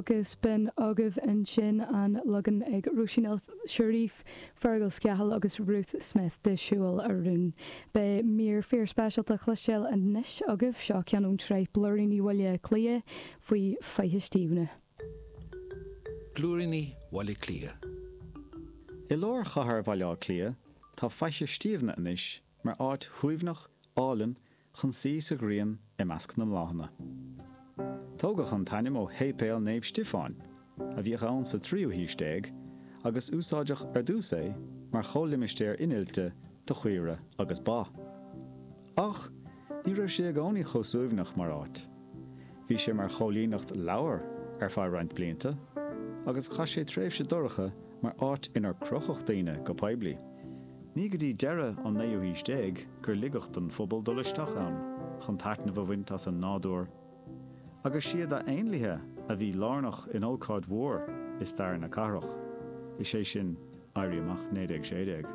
agus b'in agaibh ansin an leagan ag Róisín El Cherif, Fergal Scahill agus Ruth Smith de 'Siúil a Rún'. Beidh mír fíorspeisialta le cloisteáil anois agaibh, seo ceann ón tsraith Blúiríní Bhaile Átha Cliath faoi Fhaiche Stiabhna. Blúiríní Bhaile Átha Cliath. I lár chathair Bhaile Átha Cliath, tá Faiche Stiabhna anois mar áit shuaimhneach, álainn, chun suí sa ghrian i measc na mbláthanna. Tógadh an t-ainm ó Shéipéal Naomh Stiofáin, a bhíodh ann sa tríú haois déag, agus úsáideadh ar dtús é mar chomhlimistéar innilte do chaoire agus ba. Ach, ní raibh sé i gcónaí chomh suaimhneach mar áit. Bhí sé mar choilíneacht lobhar ar feadh roinnt blianta agus chaith sé tréimhse dorcha mar áit inar crochadh daoine go poiblí. Ní go dtí deireadh an naoú haois déag gur ligeadh don phobal dul isteach ann chun taitneamh a bhaint as an nádúr agus is iad na héanlaithe a bhí lárnach in ócáid mhór i stair na cathrach, is é sin Éirí Amach 1916.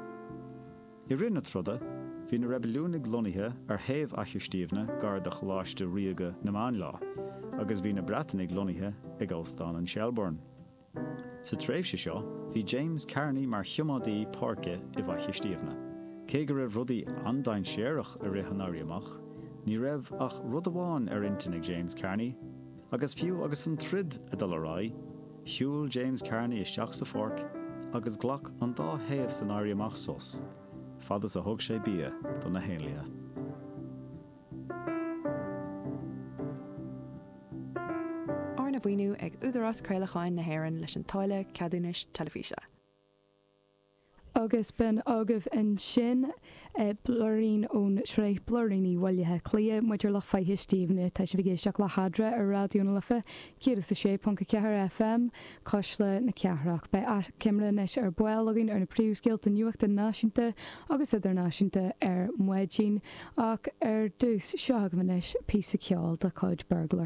I rith na troda, bhí na reibiliúnaigh lonnaithe ar thaobh Fhaiche Stiabhna gar do Choláiste Ríoga na Máinleá agus bhí na Breatanaigh lonnaithe ag Óstán an Shelbourne. Sa tréimhse seo, bhí James Kearney mar choimeádaí páirce i bhFaiche Stiabhna. Cé go raibh rudaí an-dainséarach i rith an Éirí Amach, ní raibh ach rud amháin ar intinn ag James Kearney, Agus fiú agus an troid ag dul ar aghaidh, shiúil James Kearney isteach sa pháirc agus ghlac an dá thaobh san éirí amach sos, fad is a thug sé bia do na héanlaithe. Arna mhaoiniú ag Údarás Craolacháin na hÉireann leis an Táille Ceadúnais Teilifíse. Agus b'in agaibh ansin blúirín ón tsraith Blúiríní Bhaile Átha Cliath, maidir le Faiche Stiabhna. Tá sibh ag éisteacht le hAdhradh ar Raidió na Life 106.4 FM, Cuisle na Cathrach. Beidh achoimre anois ar ball againn ar na príomhscéalta nuachta náisiúnta agus idirnáisiúnta ar maidin. Ach ar dtús, seo agaibh anois píosa ceoil de chuid Burglar.